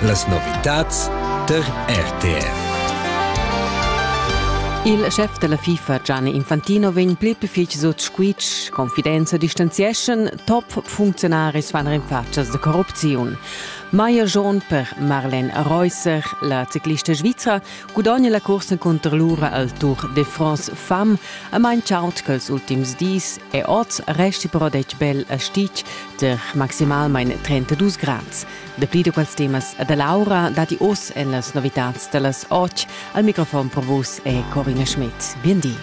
Las novitads tar RTR. Il chef della FIFA Gianni Infantino vegn pli fitg sut squitsch, confidenza distanzieschan top funzionaris van in facas de corrupziun. Maier John per Marlen Reusser, la ciclista svizra, Gudogna la cursa cunter lura al Tour de France Fam a main chaunt quels ultims dis e oz resti però detg bel a Stic ter maximalmain 32 grads. Dapli da quels temas da Laura dati oz en las novitads da las 8. Al microfon per vus è Corina Schmidt. Bien di.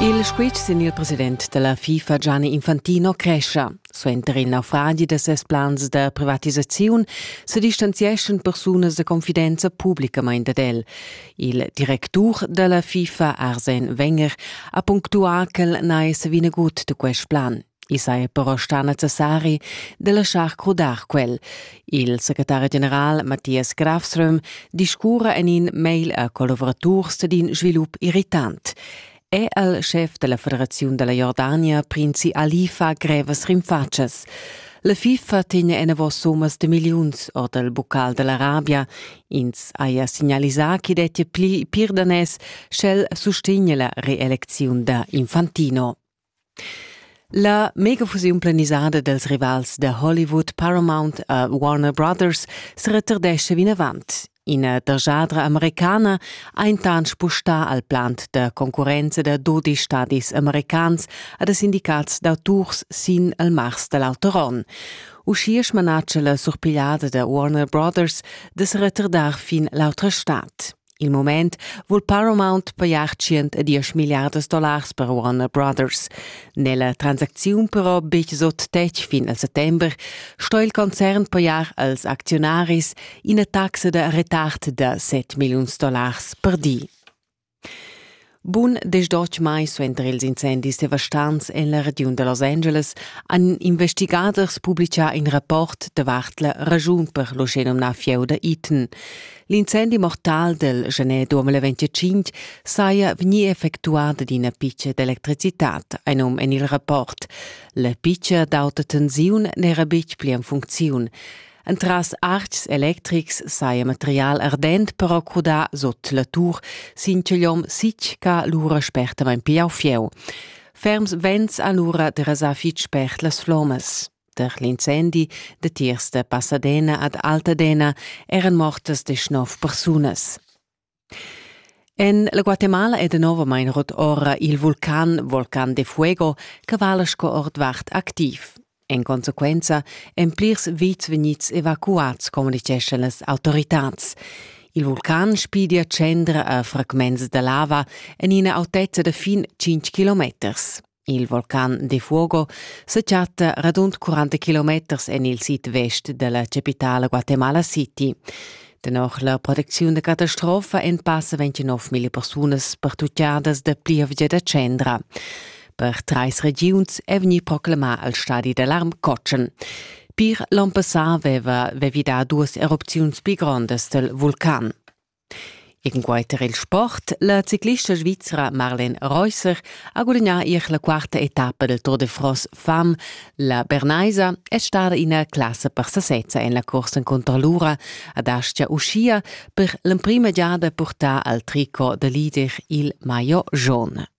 Il squitsch sin il president della FIFA Gianni Infantino crescia. Suenter in naufragi da ses plans da privatisaziun sedistanzieschan persunas da confidenza publicamain dad el. Il directur da la FIFA Arsen Wenger ha punctuà ch'el n'ha sa vinagut da quest plan. I saja però stà necessari da laschar crudar quel. Il secretari general Matthias Grafström discurra en in mail a collavuraturs d'in svilup irritant. è el schef della federaziun della Jordania prinzi Ali fa grevas rinfatschas. La FIFA tegna enavos summas de milliuns ord el bucal dell'Arabia. Ins haja signalisà che dettia pli pirdanes, sch'el sustegna la reelecziun da Infantino. La megafusiun planisada dals rivals da Hollywood Paramount a Warner Brothers seretardescha vinavant. Ina dergiadra americana ha intant spustà al plant da concurrenza da dodi stadis americans ad sindicats da tours sin il mars da l'auter onn. Uschia smanatscha la surpigliada da Warner Brothers da se retardar fin l'autra stad. Il moment vul Paramount pajar 110 milliardas dollars per Warner Brothers. Nella transacziun però betg sot tec fin al settember sto il concern pajar als acziunaris ina taxa da retard da 7 milliuns dollars per di. Bun desdotg mai suenter ils incendis devastants en la regiun da Los Angeles han investigaders publitgà in rapport davart la raschun per l'uschenumnà fieu da Eaton. L'incendi mortal del gener 2025 saja vegnì effectuà ad ina pitga d'electricitad, ein num en il rapport. La pitga d'auta tensiun n'era betg pli en funcziun. Entras artgs electrics saja material ardent però crudà sut la tur sin chigliom sitg ch'ha lura spertamain pigliau fieu. Ferms vents han lura derasà fitg spert las flommas. Per l'incendi datiers da Pasadena ad Altadena eran mortas desch nov persunas. En la Guatemala è danovamain rut ora il vulcan Volcan de Fuego che vala sco ordvart activ. En consequenza èn plirs vits vegnids evacuads, communitgeschan las autoritads. Il vulcan spidia tschendra a fragments da lava en ina autezza da fin 5 kilometers. Il vulcan de Fuogo se chatta radund 40 kilometers en il sid-vest della capitala Guatemala City. Dennoch la protecziun da catastrofa en passa 29.000 persunas pertuccadas da plievgia da tschendra. Per treis regiuns è vegni proclamà al stadi d'alarm Cocen. Per l'on passà aveva vi dà duas erupziuns pli grondas del vulcan. E cunquai tar il sport, la ciclista svizra Marlene Reusser ha gudagnà ier la quarta etappa del Tour de France Femme. La Bernaisa è stada ina classa per sasezza en la corsa contro l'ura ad Astia uschia per l'emprima giada purtà al tricot da leader il maillot jaune.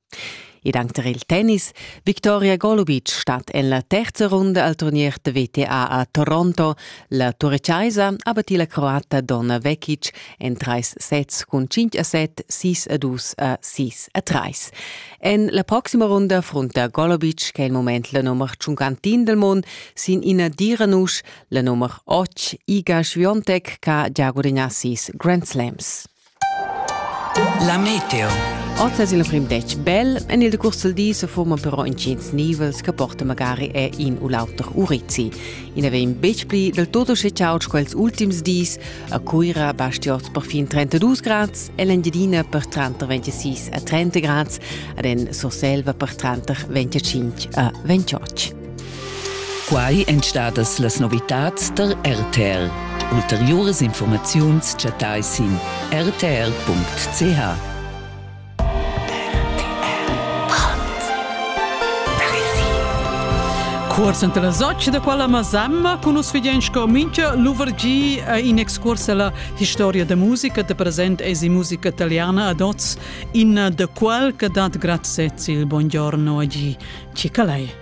Ed anc tar il tennis. Victoria Golubic stat en la terza runda al turnier da WTA a Toronto. La turechaisa ha battì la croata Donna Vekic en trais sets cun 5 a 7, 6 a 2 a 6 a 3. En la proxima runda frunta Golubic, che è il moment la nummer 51 del mondo, sin ina dira nusch, la nummer 8 Iga Świątek, che ha già gudagnà sis Grand Slams. La meteo. Oz es il prim detg bel en il decurs del di se forma però intgins nivels che porta magari a in u l'auter urizi. I ne vegn betg pli del tutto schicaut quels ultims dis a Cuira basti oz per fin 32 grads e l'Engiadina per tranter 26 a 30 grads ad en Surselva per tranter 25 a 28. Quai èn stadas las novitads tar RTL. Ulteriuras informaziuns chattai sin rtl.ch. Cuors enta la socia da quella Masamma cun us fidiens co mincha luvergi eh, in excurs alla historia da musica da present es musica italiana ad oz in eh, da qual che dat grazie il buongiorno a gi. Ci calai.